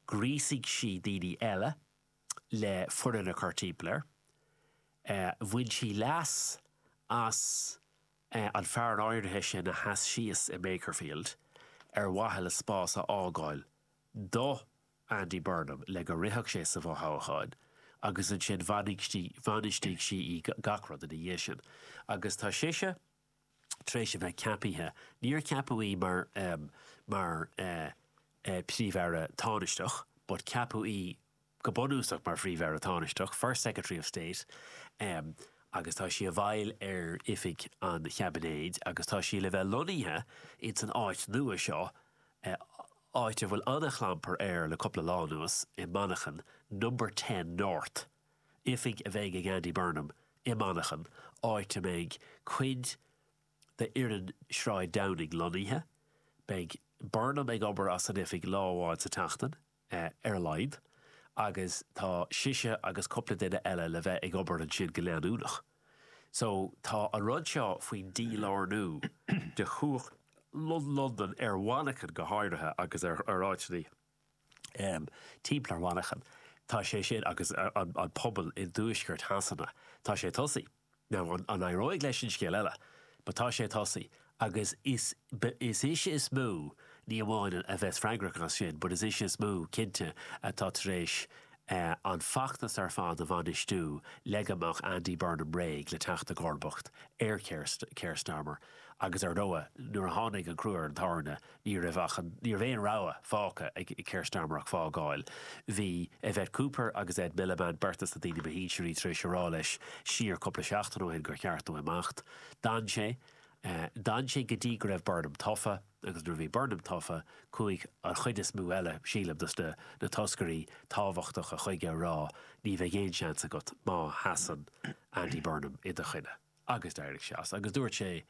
Ghríosaigh sí daoine eile le foireann a chur timpeall air. Bhain sí leas as an fear áirithe sin a sheas síos i Makerfield ar mhaithe le spás a fhágáil do Andy Burnham le go rithfeadh sé sa bhfothoghchán agus ansin bhainistigh sí í gach rud ina dhiaidh sin agus tá sise tar éis a bheith ceapaithe, níor ceapadh í mar mar Phríomh-Aire Tánaisteach but ceapadh í go bunúsach mar Phríomh-Aire Tánaisteach, First Secretary of State, agus tá sí i bhfeighil ar oifig an Chaibinéid agus tá sí le bheith lonnaithe insan áit nua seo, áit a bhfuil an-chlampar air le cúpla lá anuas, i Manchain, Number Ten North. oifig a bheidh ag Andy Burnham i Manchain, áit a mbeidh cuid d'fhoireann Shráid Downing lonnaithe. Beidh Burnham ag obair as an oifig lá amháin sa tseachtain, ar a laghad, agus tá sise agus cúpla duine eile le bheith ag obair ansin go leanúnach. So, tá an rud seo faoin dílárnú de chumhacht Londan, ar Mhanchain go háirithe, agus ar áiteanna. timpeall ar Mhanchain, tá sé sin agus an pobal i dtuaisceart Shasana, tá sé tosaithe. Now, an éireoidh leis sin, scéal eile, but tá sé tosaithe agus is is ise is mó, ní amháin a bheas freagrach as sin, but is ise is mó, cinnte, atá tar éis an feachtas ar fad a bhainistiú le go mbeadh Andy Burnham réidh le teacht i gcomharbacht ar Keir Starmer agus ar ndóigh, nuair a tháinig an crú ar an tairne, Ní raibh ach an, ní raibh aon rogha fágtha ag Keir Starmer ach fágáil. Bhí Yvette Cooper agus Ed Miliband beirt de na daoine ba shinsearaí tar éis a rá leis siar cúpla seachtain ó shin gur cheart dó imeacht. D'fhan sé. D'fhan sé go dtí go raibh Burnham tofa agus nuair a bhí Burnham tofa, chuaigh an chuid is mó eile, sílim, de na toscairí tábhachtacha chuige a rá ní bheidh aon seans agat má sheasann Andy Burnham i do choinne. Agus d'éirigh sé as, agus dúirt sé,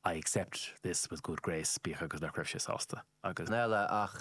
I accept this with good grace, bíodh agus nach raibh sé sásta, agus.